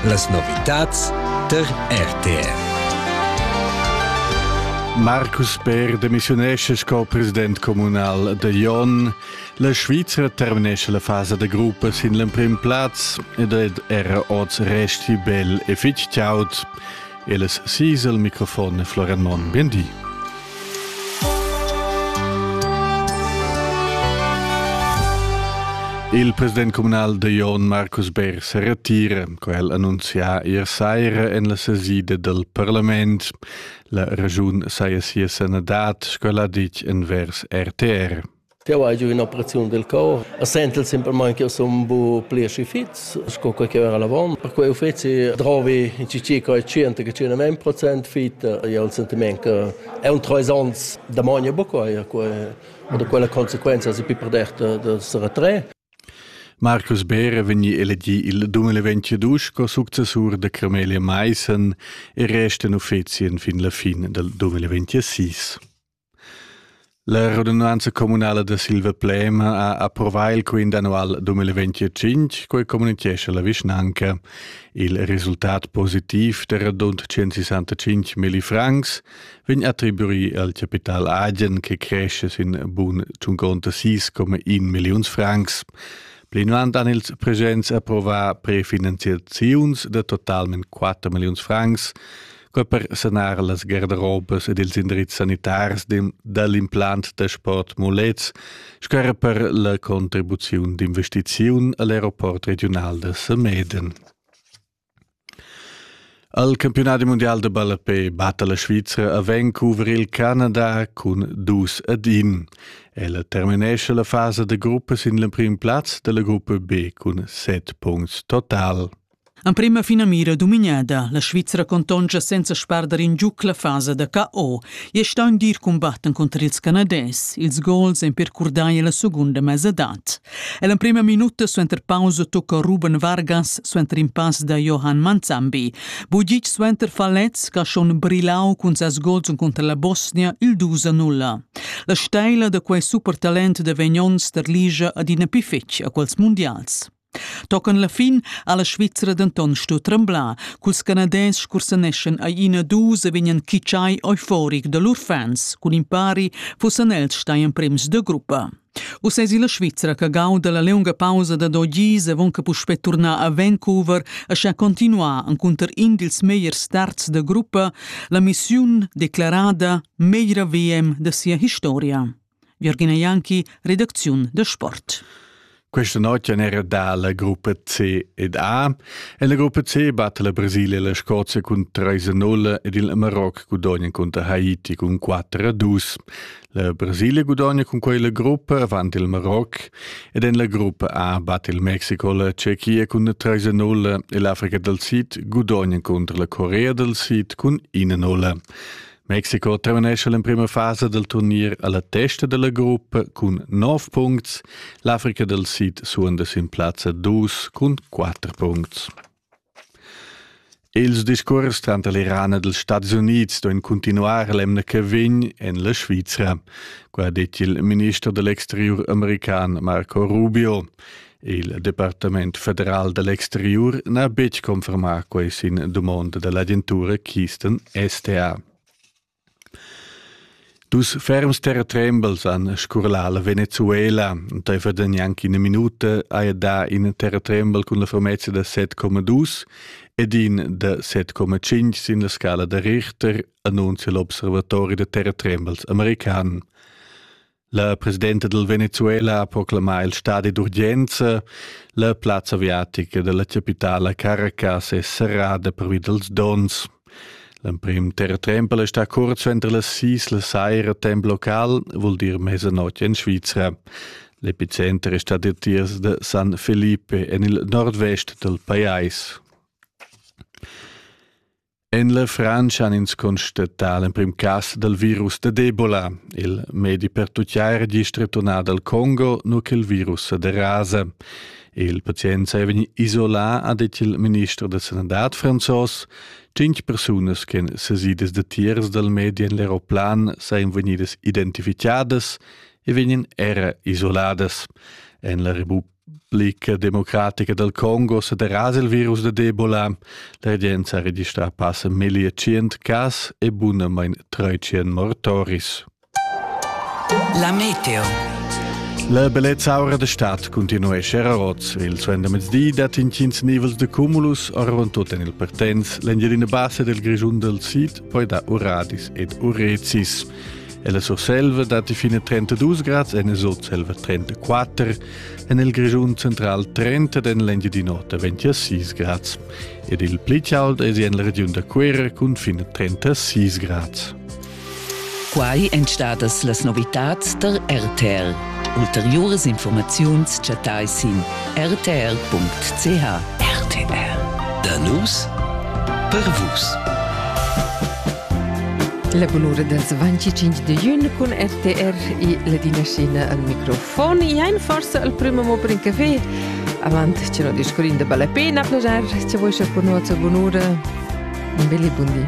Las novitads tar RTR. Marcus Peer demissiunesce sco president communal da Jon. La Svizra terminesce la fasa da gruppa sin l'emprim plaz ed era oz resti bel e fitg chaud. El es sis el microfon e Florian Monn, bien di. Il president communal de Jon Markus Beer se retira, quel annunzia ier saira en la sesida del parlament. La ragiun saia sia sanadad, sco l'ha ditg envers RTR. Jau hai giu in'operaziun del cor e sentel semplamain che sun bu pli aschi fits sco quei che era l'avon. Per quei uffeci drovi in circa 100-110% fit. E ho il sentiment che è un treis onns da mogna buca e quei und da quella consequenza si più per derta da se retrair. Marcus Beere vegni elegi il 2022 sco successur da Cremelia Maissen e resta in uffeci fin la fin del 2026. La radunanza communala da Silvaplema ha approvà il quint annual 2025, quai communitgescha la vischnanca. Il resultat positiv da radund 165 milli francs vegn attribuì al capital agen che cresce sin bun 56,1 milliuns francs. Plinavant han ils presents approvà prefinanziaziuns da totalment 4 milliuns francs co per sanar las garderobas ed ils indrizs sanitars dall'implant da sport Mulets, sco era per la contribuziun d'investiziun al aeroport regional da Sameden. Al campionat mundial de ballapé batta la Svizra a Vancouver il Canada cun dus ad in. Ella terminesce la fasa de gruppa sin l'emprim plaz della gruppa B cun set punts total. Emprema finamira dumignada, la Svizra contonscha senza sparder in giuc la fasa da KO e sta in dir combatten contr ils Canadais. Ils gols en percurdai la segunda mesadad. E l'emprema minuta suenter pausa tocca Ruben Vargas suenter in pass da Johan Manzambi. Bugic suenter Falez che ha schon brillau cun ses gols contr la Bosnia il 2 0. La steila da quei super talent da Vegnon sterligia adina piffetg a quels mundials. Tocan la fin ha la Svizra denton stu tremblar, culs Canadès scursaneschan ai ina dus e vegnan kitschai euforic da lur fans, cun impari fussan els stai emprems de gruppa. Uss esi la Svizra che gauda la lunga pausa da dogis e von che puspè turnar a Vancouver e scha continuar encunter in dils megliers starts de gruppa la missiun declarada meglra VM de sia historia. Jürgina Janki, redacziun de sport. Questa notte era dalla gruppa C ed A. En la gruppa C batte la Brasilia la Scozia cun 3-0 ed il Marocco gudogna contro Haiti cun 4-2. La Brasilia gudogna con quella gruppa avanti il Marocco ed en la gruppa A batte il Mexico la Cecchia cun 3-0 e l'Africa del Sid gudogna contro la Corea del Sid cun 1-0. Mexico terminescha l'emprima fasa del turnier alla testa della gruppa cun 9 punts, l'Africa del Sid suonda sin plazza 2 cun 4 punts. Ils discurs tanter l'Iran e dels Stati Units doen continuar l'emna che vegn en la Svizra, qua ha detto il ministro dell'exterior american Marco Rubio. Il Departament federal da l'exteriur n'ha betg confermà quai sin dumonda da l'agentura Keystone STA. Dus ferms terratrembels han scurlà la Venezuela. Entaifer gnanc ina minuta haja dà in terratrembel cun la fermezza da 7,2 ed in da 7,5 sin la scala da Richter, annunzia l'observatori da terratrembels american. La presidenta del Venezuela ha proclamà il stadi d'urgenza. La plazza aviatica della capitala Caracas è serrada pervi dels dons. L'emprim terratrempel è sta kurz suenter las sis la saira temp local, vuol dir mezzanotte in Svizzera. L'epicenter è stato il tiers de San Felipe en il nord-vest del pajais. En la Frantscha han ins constatà l'emprim cas dal virus da d'Ebola. Il medi per tutgiar è gist returnà dal Congo, nu che il virus da rasa. Il pazient è vegnì isolà, ha detto il ministro da sanità franzos. Cinque persone che han sesidas da tiers dal medi en l'aeroplan sono venidas identificadas e vegnan era isoladas. En la Republik Blick democratica dal Congo sederasa il virus da d'Ebola. La regenza ha registrà passa meglio 100 cas e bunamain 300 mortoris. La meteo. La bellezza aura da stat continuesce a Roz. Il suendamezdi dat intgins nivels de cumulus orron tot en il Pertens, l'Engelina bassa del Grischun del Sid, poi da Uradis ed Urezis. Ella Surselva datti fin a 32 grads en il Sotselva 34, en il Grischun central 30 en l'Engiadin'Ota 26 grads ed il pli chaud è en la regiun da Cuera cun fin a 36 grads. Quai èn stadas las novitads tar RTL. Ulteriuras informaziuns chattais sin rtr.ch. RTR. Da nus per vus. La bunura dals 25 de giugno con RTR e la dinastina al microfon. Iain forse al primo mo per in caffè. Avant ce no discurin de vale pena, piacere, ce vuoi con noi bunura. Un belli buondì.